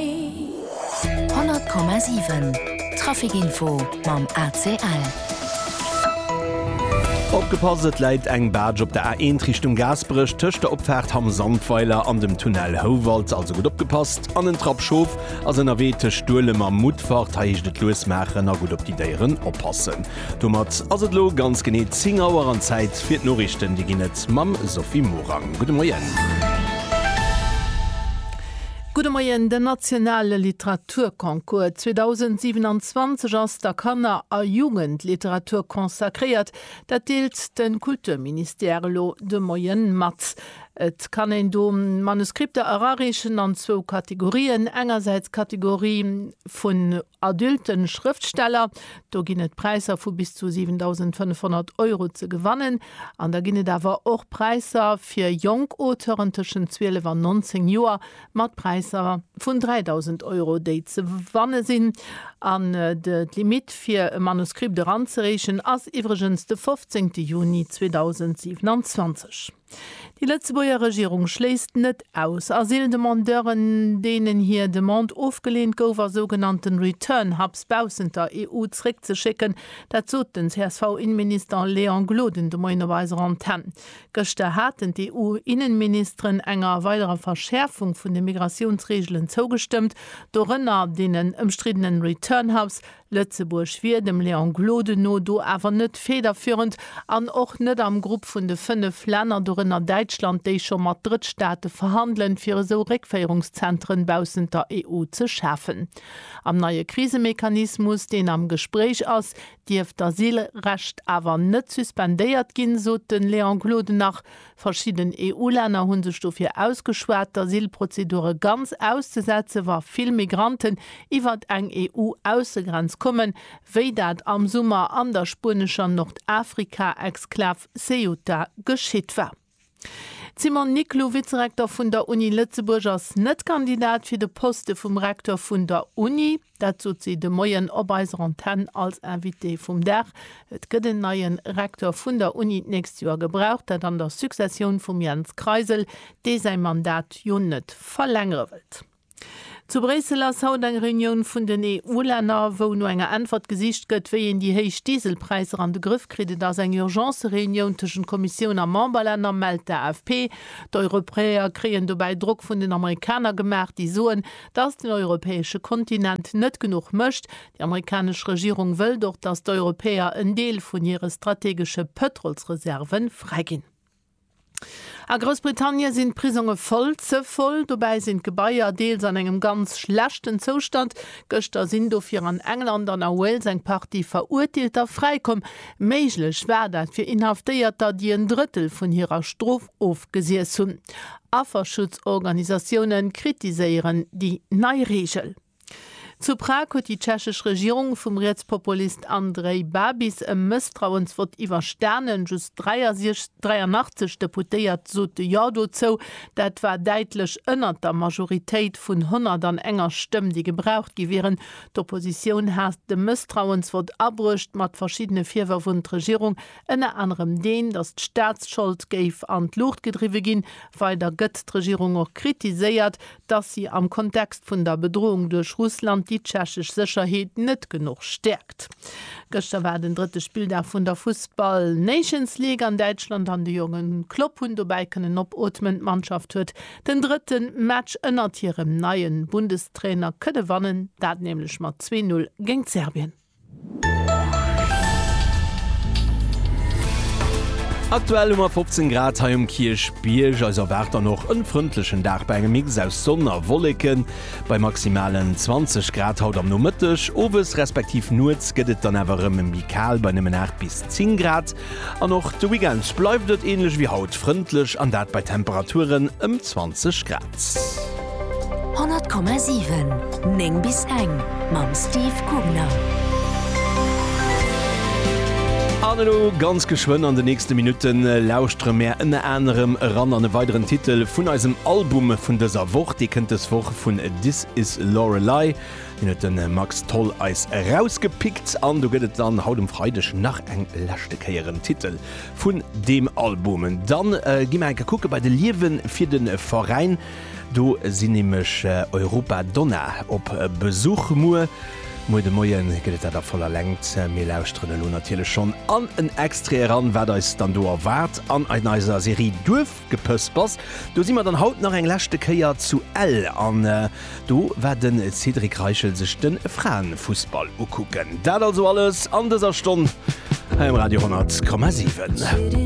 100,7 Traficinfo mam ACL. Opgepasst, et läit eng Barge op der A1 Richtung Gaasperech tëscht der Opfaart Hamm Sandweiler an dem Tunnel Houwald, also gutt opgepasst. An en Trapp Schof ass ënnerwee tëscht Duelem a Mutfert, hei heescht et lues maachen a gutt op déi Déieren oppassen. Domat ass et elo ganz genee 10 Auer an Zäit fir d'Noriichten, déi ginn et mam Sophie Morang. Gudde Moien. Gudde Moien, Den nationale Literaturconcours 2027 ass der Kanner a Jugendliteratur consacréiert. Dat deelt de Kulturministère elo de Moien mat. Et kann een do Manuskripter erareechen an zwou Kategorien, engersäits d'Kategorie vun adülte Schrëftsteller, do ginn et Präisser vu bis zu 7.500 Euro ze gewannen, An da ginn et awer och Präisser fir jonk Auteuren tëschent 12 an 19 Joer, mat Präisser vun 3.000 Euro, déi ze wanne sinn. An d'Limitt fir e Manuskript eranzereechen ass iwwregens de 15 Juni 2027. Déi Lëtzebuerger Regierung schléisst net aus, Asyldemandeuren, deenen hir Demande ofgeleent gouf, a sougenannte Return-Hubs baussent der EU zréckzeschécken. Dat sot den CSV-Innenminister Léon Gloden de Moien op eiser Antenn. Gëschter haten d'EU-Innenministeren enger weiderer Verschäerfung vun de Migratiounsreegelen zougestëmmt, dorënner deenen ëmstriddenen Return Hubs. Lëtzebuerg wier dem Léon Gloden no do awer net federführend an och net am Grupp vun de fënnef Länner, dorënner Däitschland, déi scho mat Drëttstaate verhandelen, fir esou Réckféierungszenteren baussent der EU ze schafen. Am neie Krisemechanismus, deen am Gespréich ass, dierft d'Asylrecht awer net suspendéiert ginn, sot de Léon Gloden nach. Verschidden EU-Länner hu sech dofir ausgeschwat, d'Asylprozedure ganz auszesetzen, wa vill Migranten iwwer eng EU-Aussegrenz kommen, wéi dat am Summer an der spuenescher Nordafrika-Exklav Ceuta geschitt war. D'Simone Niclou, Vizerektor vun der Uni Lëtzebuerg, ass net Kandidat fir de Poste vum Rektor vun der Uni. Dat sot si de Moien op eiser Antenn als Invitée vum Dag. Et gëtt en neie Rektor vun der Uni d'nächst Joer gebraucht. Dat an der Successioun vum Jens Kreisel, dee säi Mandat jo net verlängere wëllt. Zu Bréissel ass haut eng Reunioun vun den EU-Länner, wou no enger Äntwert gesicht gëtt, wéi een déi héich Dieselpräisser an de Grëff kritt. Et ass eng Urgence-Reunioun tëschent Kommissioun a Memberlänner, mellt d'AFP. D'Europäer kréien dobäi Drock vun den Amerikaner gemaach, déi soen, datt den europäesche Kontinent net genuch mécht. Déi amerikanesch Regierung wëllt och, datt d'Europäer en Deel vun hire strategesche Pëtrolsreserve fräiginn. A Groussbritannien sinn d'Prisonge voll, ze voll. Dobäi sinn d'Gebaier deels an engem ganz schlechten Zoustand. Gëschter sinn dofir an England an a Wales eng Partie Verurteelter fräikomm. Méiglech war dat fir Inhaftéierter, déi en Drëttel vun hirer Strof ofgesiess hunn. Afferschutzorganisatioune kritiséieren déi nei Reegel. Zu Prag huet déi tschechesch Regierung vum Rietspopulist Andrej Babis e Mësstrauensvott iwwerstanen. Just 83 Deputéiert sote Jo dozou. Dat war däitlech ënnert der Majoritéit vun 101 Stëmm, déi gebraucht gi wieren. D'Oppositioun hat de Mësstrauensvott abruecht, mat verschiddene Virwërf un d'Regierung, ënner anerem deen, datt d'Staatsschold géif an d'Luucht gedriwwe ginn. Weider gëtt d'Regierung och kritiséiert, dass si am Kontext vun der Bedrohung duerch Russland déi tschechesch Sécherheet net genuch stäerkt. Gëschter war den drëtte Spilldag vun der Fussball Nations League an Däitschland an de jonge Klopp hunn dobäi kënnen opootmen. D'Mannschaft huet den drëtte Match ënnert hirem neie Bundestrainer kënne wannen, dat nämlech mat zwee Null géint Serbien. Aktuell hu mer 15 Grad hei um Kierchbierg. Eis erwaart dann och en frëndlechen Dag bei engem Mix aus Sonn a Wolleken. Bei maximalen 20 Grad haut am Nomëtteg. Owes respektiv nuets gëtt et dann awer erëm méi kal bei nëmmen 8 bis 10 Grad. An och de Weekend bleift et änlech ewéi haut frëndlech, an dat bei Temperaturen ëm 20 Grad. 100,7, 9 bis eng mam Steve Kugner. An elo ganz geschwënn an de nächste Minutte lauschtere mär ënner anerem eran an e weideren Titel vun eisem Album vun dëser Woch. Dee kënnt dës Woch vun This Is Lorelei. Hien huet den Max Tholl eis erausgepickt an do gëtt et dann haut um Freideg nach eng leschte Kéier en Titel vun deem Album. Dann gi mer enke kucke bei de Liewe fir de Veräin. Do sinn nämlech Europa Donna op Besuch. Muer, muer de Moien gëtt et dat a voller Längt. Mir lauschteren elo natierlech schonn an en Extrait eran, wat eis dann do erwaart an an eiser Serie Duerf. Gepëspers. Do si mer dann haut nach eng leschte Kéier zu Ell an do war de Cédric Reichel sech de Fraenfussball ukucken. Dat also alles an dëser Stonn hei um Radio 10,7.